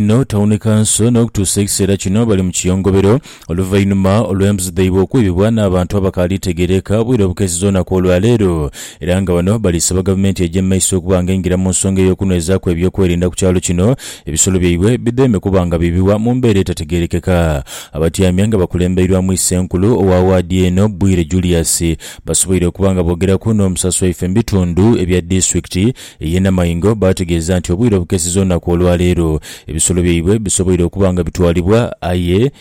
n'otawoneka nso n'okutuusa ekiseera kino bali mu kiyongobero oluvainhuma olw'embuzi dhaibwe okwibibwa n'abantu abakaali tegeereka obwire obukeesiza olunaku olwa leero era nga bano bali saba gavumenti eje mu maiso okuba nga eingira mu nsonga ey'okunwezaaku eby'okwerinda ku kyalo kino ebisolo byaibwe bidheeme kuba nga biibibwa mu mbeera etategeerekeka. Abatyaime nga bakulembeirwamu Isenkulu owa waadi eno Bwire Julius basoboire okuba nga boogeraku n'omusasi waife mu bitundu ebya disitulikiti Ye namaingo baategeeza nti obwire obukeseza olunaku olwa leero, ebisolo byaibwe bisoboire okuba nga bitwalibwa aye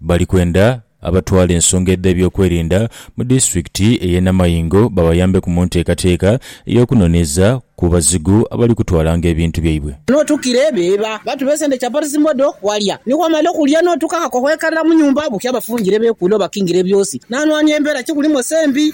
bali kwenda abatwala ensonga edh'ebyokwerinda mu disitulikiti eye Namaingo babayambeku mu nteekateeka ey'okunoneza ku bazigu abali kutwalanga ebintu byaibwe. Notukire beba batube sente chapati zimodo walya nikwo omale okulya notuka akakohwekarira munyumba bukya bafungire bekule obakingira ebyosi nanwani embera kikuli mose mbi.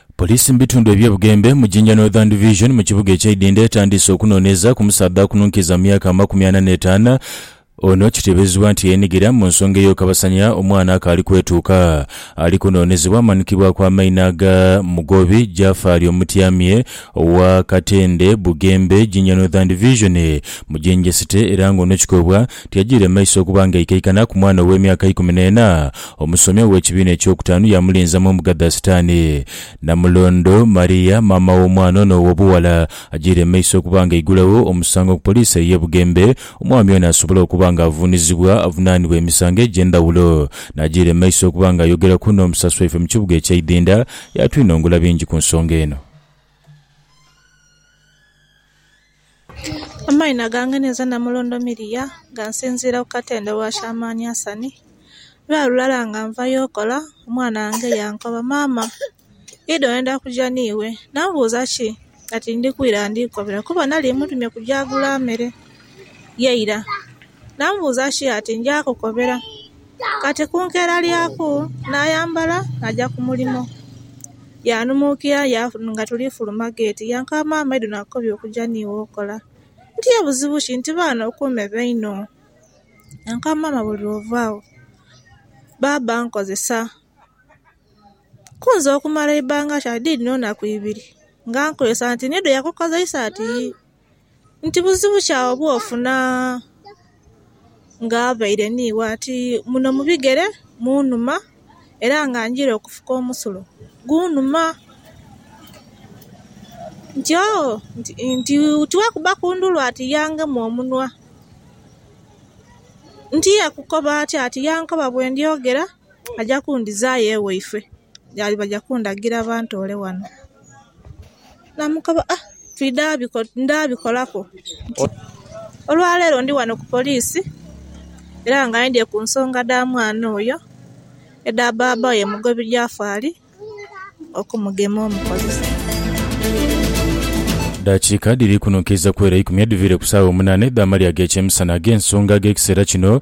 Poliisi mu bitundu ebye Bugembe mu Jinja Northern Division mu kibuga ekye Idinda etandiise okunoneeza ku musaadha akununkiza mu myaka amakumi ana n'etaanu ono kitebezebwa nti yenigira mu nsonga eyokabasanya omwana akaali kwetuuka. Ali kunonezebwa amanukibwaku amaina aga Mugobi Jafaali Omutyamye owa Katende, Bugembe, Jinja Northern Division mu Jinja City era nga ono kikobwa nti ajiire mu maiso okuba nga aikaikana ku mwana ow'emyaka ikumi n'ena Omusomi ow'ekibiina eky'okutaanu yaamulinza mu mbuga dha Sitaani. Namulondo, Maria, maama w'omwana ono ow'obughala, ajiire mu maiso okuba nga aigulagho omusango ku poliisi ey'e Bugembe, omwami ono asobole okuba nga avuunizibwa avunaanibwe emisango egy'endhawulo. Naajiira mu maiso okuba nga ayogeraku n'omusasi waife mu kibuga ekya Idhinda, yaatwinhongula bingi ku nsonga eno. Amaino gange ninze namulondo Miria nga nsinziira ku katende wa Shamani Asani. Lwa lulala nga nvayo okola, omwana wange yankoba, Maama, idi oyenda kuja n'iwe? Namubuuza ki ati ndi kwira ndi kukobera kuba nali mutumye kuja agule amere ye ira. Namubuuza ki ati nja kukobera. Kati ku nkeera lyaku naayambala naja ku mulimo. Yaanhumuukira nga tuli kufuluma geeti yankaba, Maama idho nakukobya okuja n'iwe okola. Nti ye buzibu ki? Nti baana okuume baino. Yankaba, Maama buli lw'ova agho baaba ankozesa ku nze okumala eibbanga ki? Ati dhidhino naku ibiri nga ankozesa nti nidho yakukozeisa ati yii. nti buzibu ki agho bwofuna nga avaire ni gho ati muno mu bigere munhuma era nga njira okufuka omusulo gunhuma nti ooh nti tiwakuba ku ndhulu ati yangema omunwa nti yekukoba atya ati yankoba bwendyogera aja kundhizayo ewaifwe baja kundhagira bantoole ghano. Naamukoba ah ndhabikolaku nti olwaleero ndi wano ku poliisi era nga aidhye ku nsonga dha mwana oyo edha bbaabba we Mugobi Jafali okumugema omukozesa. Edhakiika dhiri kunhunkiiza ku ere eikumi edhiviire ku saagha omunaana edh'amalya ag'ekyemisana ag'ensonga ag'ekiseera kino